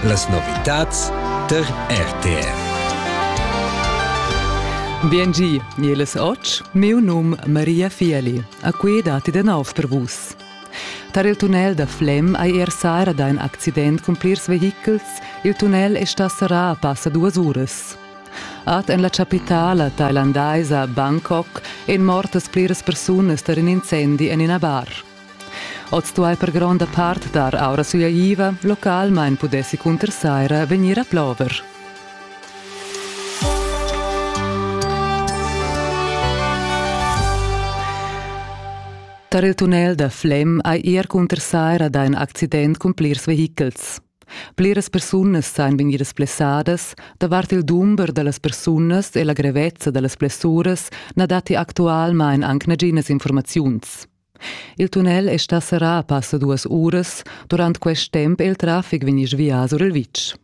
Las novitads tar RTR. Biengi, mieles och, meu num Maria Fieli, a qui dati de nav per vus. Tar il tunnel da Flem hai er sara da in accident cun plirs vehichels, il tunnel è sta serrà a passa duas uras. At en la capitala thailandaisa Bangkok en mortas pliras persunas tar in incendi en ina bar. Oz duai per gronda part dar aura suyaiva, localmain pudessi cunter saira vegnir a plover. Tar il tunnel da Flem hai er cunter saira dà in accident cun plirs vehichels. Pliras persunas sain vegnidas blessadas, davart il dumber da las persunas e la grevezza da las blessuras na datti actualmain anc naginas informaziuns. Il tunnel è stà serrà passa duas uras, durant quest temp è il traffic vegnì svià sur il vitg.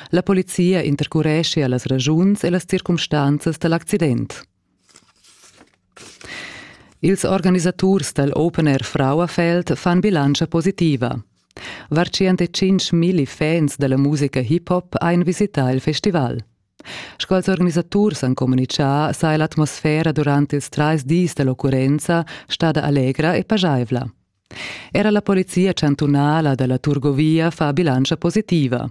La polizia intercurescia las ragiuns e las circumstanzas da l'accident. Ils organisaturs dal Open Air Frauenfeld fan bilantscha positiva. Var 105.000 fans da la musica hip-hop ein visità il festival. Sco ils organisaturs han communitgà, saja l'atmosfera durant ils trais dis da l'occurrenza stada allegra e pajaivla. Era la polizia chantunala da la Turgovia fa bilantscha positiva.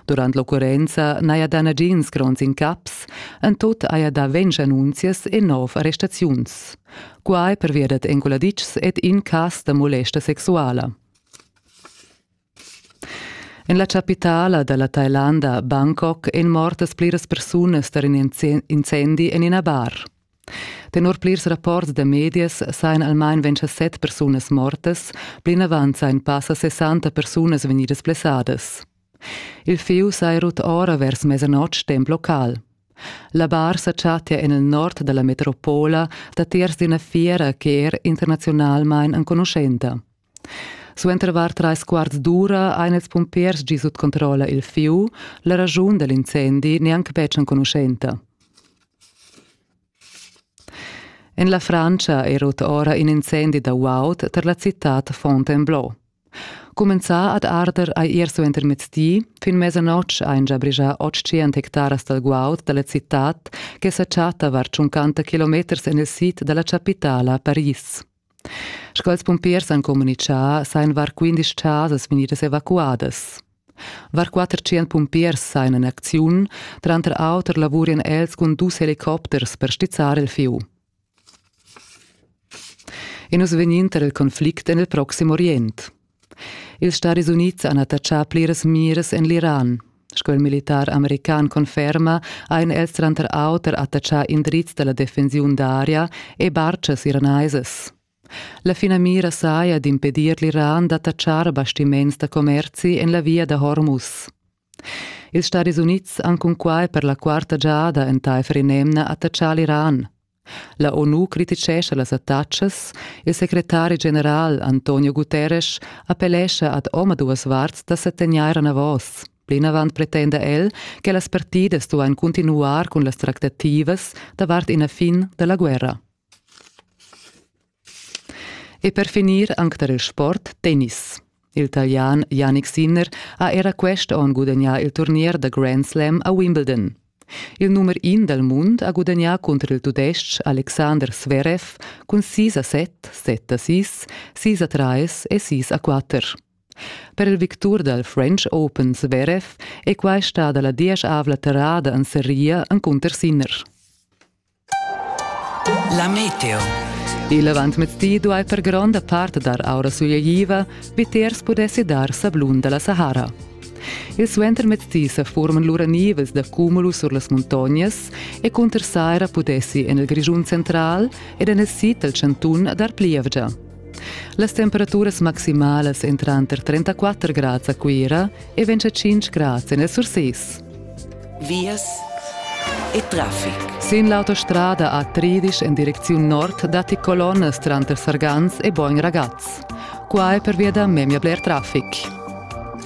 Durant l'occurrenza n'haja dà nagins gronds incaps, en tut haja dà ventg annunzias e nov arrestaziuns. Quai pervia dad enculaditschs ed incass da molesta sexuala. En la chapitala da la Tailanda, Bangkok, èn mortas pliras persunas tar in incendi en ina bar. Tenor plirs rapports da medias sajan almain ventg a set persunas mortas, plinavant sajan passa 60 persunas vegnidas blessadas. Il fieu saja rut ora vers mesanotg temp local. La bar sa chattia en il nord da la metropola datiers d'ina fiera che er internaziunalmain enconuschenta. Suenter var trais quarts d'ura ein ils pumpers gi sut controlla il fiu. La raschun dell'incendi neanc betg enconuschenta. En la Francia è rot ora in incendi da guaud tar la citad Fontainebleau. Cumenzà ad arder hai ier suenter mezdi, fin mesanotg ein già brigia 800 hectaras dal guaud dalla citad che sa chatta var 50 kilometers en il sid dalla chapitala Paris. Sch'els pumpiers han communitgà, sajan var quindesch chasas vegnidas evacuadas. Var 400 pumpiers sajan en acziun, tranter auter lavurian els cun dus helicopters per stizzar il fieu. E nus vegnin tar il conflict en il Proxim Orient. Ils Stadis Unids han attachà pliras miras en l'Iran. Sco il militar american conferma, han els tranter auter attachà indrizs da la defensiun d'aria e bartgas iranaisas. La finamira saja d'impedir l'Iran d'attachar bastiments da commerzi en la via da Hormuz. Ils Stadis Unids han cunquai per la quarta giada entaifer in'emna attatgà l'Iran. La ONU crititgescha las attacas. Il secretari general Antonio Guterres appellescha ad omaduas varts da settegnair anavos. Plinavant pretenda el che las partidas duain cuntinuar cun las tractativas davart ina fin da la guerra. E per finir anc tar il sport tennis. Il Talian Yannick Sinner ha era quest onn gudagnà il turnier da Grand Slam a Wimbledon. Il numer in dal mund ha gudagnà cunter il tudestg Alexander Zverev cun sis a set, set a sis, sis a trais e sis a quatter. Per il victur dal French Open Zverev è quai stada la dieschavla terrada en seria encunter Sinner. La meteo. Il avantmezdi duai per gronda part dar aura sugliaiva, vitiers pudessi dar sablun da la Sahara. Il suentermezdi sa forman lura nivels da cumulus sur las muntognas e cunter saira pudessi en il Grischun central ed en il sid dal chantun dar plievgia. Las temperaturas maximalas èn tranter 34 grads a Cuira e 25 grads en el Sursis. Vias e traffic. Sin l'autostrada a Tridisch en direcziun nord datti colonnas tranter Sargans e Bogn Ragaz. Qua è pervia da memia bler traffic.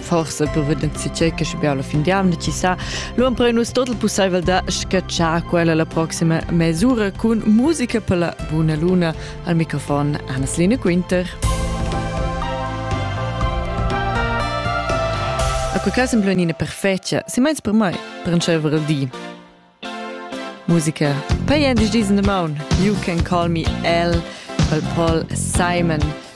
forsa per vedent che che be alla fin di anno ci sa lo ampre nus tot il pussaivel da scacciar quella la prossima mesura con musica per la buona luna al microfon Anna-Line Quinter A quel caso sembra una perfetta, se meins per mai, per un cevere il di. Musica. Pay and diesen the moon. You can call me Elle, Paul Simon.